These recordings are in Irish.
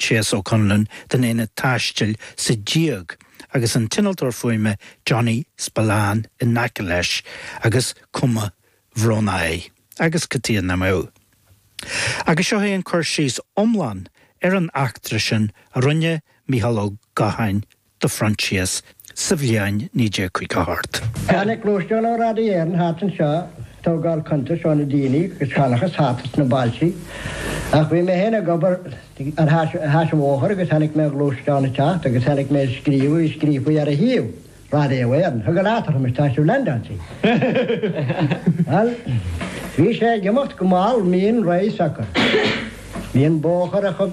Sheas Ó Conluain den Aonad Taistil sa díog agus an t-innealtóir fuaime Johnny Spillane in aice leis agus cuma bhrónach air agus cad chuige nach mbeadh. Agus seo é an cur síos iomlán ar an eachtra sin a rinne Micheál Ó Gacháin do Phroinsias sa bhliain 1958. Tháinig gluaisteán ó Radio Éireann thart anseo ag tógáil cuntais ó na daoine agus seanchas thart sna bailtí. Ach bhí mé féin ag obair ar ais an bhóthair agus chonaic mé an gluaisteán ag teacht agus chonaic mé an scríobh a bhí scríofa ar a thaobh, Radio Éireann. Thug an eatarthu, Anois tá sibh linn, Dancy. Bhuel, bhí sé ag imeacht go mall, mín, réidh acu. Bhí an bóthar a.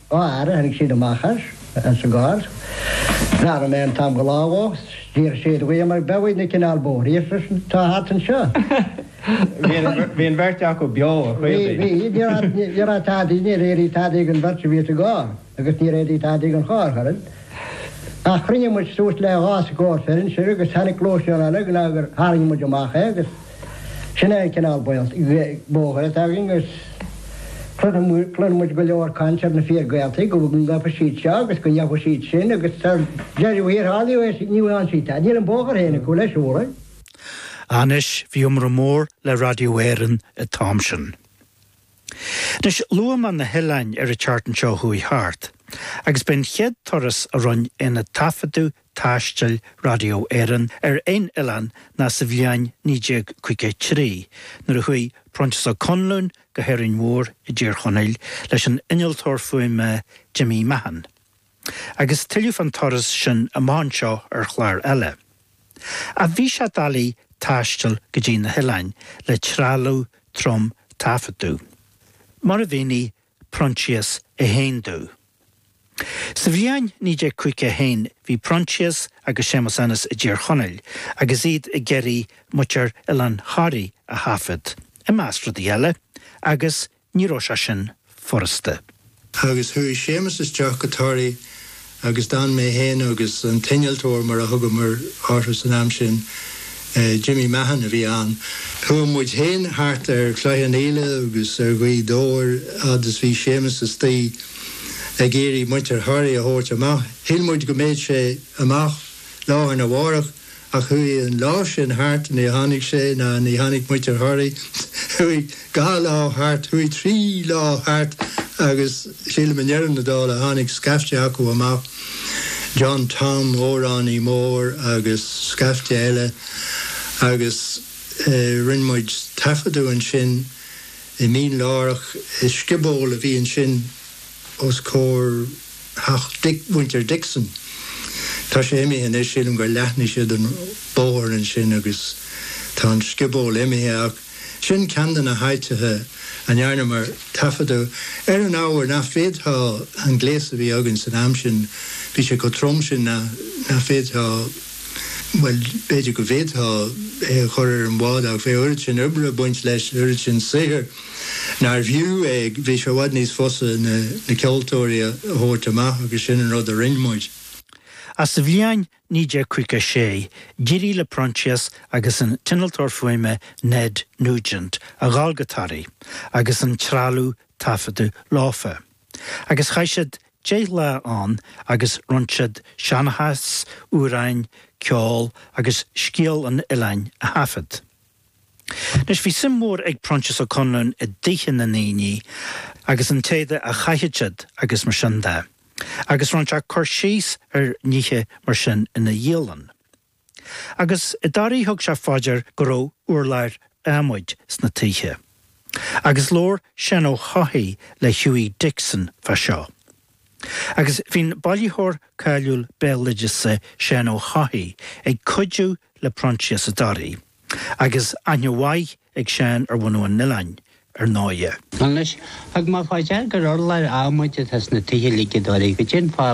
Dhá aire tháinig siad amach as, as an gcarr. Bhreathnaigh mé ar an t-am go lámhach. D'iarr siad uaim mar beadh uaidh na cineál bóithrí ar seisean, Tá thart anseo. Bhí an bheirt acu beo, a chaoil di. Bhí, bhí. Níor fhad, níor fhad tadaí, níor éirigh tadaí don bheirt a bhí sa gcarr agus níor éirigh tadaí don charr ach oiread. Ach chruinnigh muid suas le dhá scór fir ansin agus tháinig clóis anall ag nó gur tharraing muid amach é agus. Sin é an cineál bóthair atá againn agus cluineann muid go leor caint ar na fíor-Ghaeltachtaí, go bhfeicfidh siad seo agus go ndéanfaidh siad sin agus sa deireadh thiar thall ní fhaigheann siad tada. Níl an bóthar féin acu le siúl. Anois bhí iomrá mór le Radio Éireann an t-am sin. Anois luamar na hoileáin ar an tseachtain seo a chuaigh thart agus b'é an chéad turas a rinne aonad taifeadadh taistil Radio Éireann ar aon oileán ná sa bhliain 1953, nuair a chuaigh Proinsias Ó Conluain go hÁrainn Mhór i dTír Chonaill leis an innealtóir fuaime Jimmy Mahon, agus tuilleadh fán turas sin amach anseo ar chlár eile. Ach bhí sé doiligh taisteal go dtí na hoileáin le trealamh trom taifeadadh, mar a mhínigh Proinsias féin domh. Sa bhliain 1951 bhí Proinsias agus Séamus Ennis i dTír Chonaill agus iad ag iarraidh muintir Oileán Thoraí a thaifead, i measc rudaí eile, agus ní raibh sé sin furasta. Agus chuaigh Séamus isteach go Toraigh agus d'fhan mé féin agus an t-innealtóir, mar a thugamar orthu san am sin, Jimmy Mahon a bhí ann, chuaigh muid féin thart ar Chloich Cheann Fhaola agus ar Ghaoth Dobhair fhad is bhí Séamus istigh ag iarraidh muintir Thoraí a thabhairt amach. Shíl muid go mbeadh sé amach lá arna mhárach. Ach chuaigh an lá sin thart, ní tháinig sé ná ní tháinig muintir Thoraí. Chuaigh dhá lá thart, chuaigh trí lá thart agus sílim i ndeireadh na dála tháinig scaifte acu amach, John Tom, amhránaí mór agus scaifte eile agus rinne muid taifeadadh ansin i Mín Lárach i scioból a bhí ansin. os comhair theach mhuintir Dixon. Tá sé imithe anois, sílim gur leathnaigh siad an bóthar ansin agus tá an scioból imithe ach sin ceann de na háiteacha a ndearnamar taifeadadh ar an ábhar nach dtiocfadh, an gléas a bhí againn san am sin, bhí sé chomh trom sin nach bhféadfá. Bhuel, b'fhéidir go bhféadfá é a chur ar an bhád ach bheadh oiread sin oibre ag baint leis, oiread sin saothair nár bhfiú é. Bhí sé i bhfad níos fusa na ceoltóirí a thabhairt amach agus sin an rud a rinne muid. Ach sa bhliain 1956, d'éirigh le Proinsias agus an t-innealtóir fuaime Ned Nugent a dhul go Toraigh agus an trealamh taifeadta leofa, agus chaith siad Deich lá ann agus rinn siad seanchas, amhráin, ceol agus scéal an oileáin a thaifead. Anois, bhí suim mhór ag Proinsias Ó Conluain i dtithe na ndaoine agus an t-éadach a chaitheadh siad agus mar sin de, agus rinne sé cur síos ar nithe mar sin ina dhialann. Agus i dToraigh thug sé fá dear go raibh urláir adhmaid sna toighthe. Agus labhair Séan Ó hEochaidh le Hughie Dixon fá seo. Agus bhí'n bailitheoir cáiliúil béaloideasa Séan Ó hEochaidh ag cuidiú le Proinsias i dToraigh, agus aithne mhaith ag Séan ar bhunadh an oileáin, ar ndóighe. Anois, thug mé fá dear gur urláir adhmaid atá sna toighthe uilig i dToraigh. Goidé an fáth a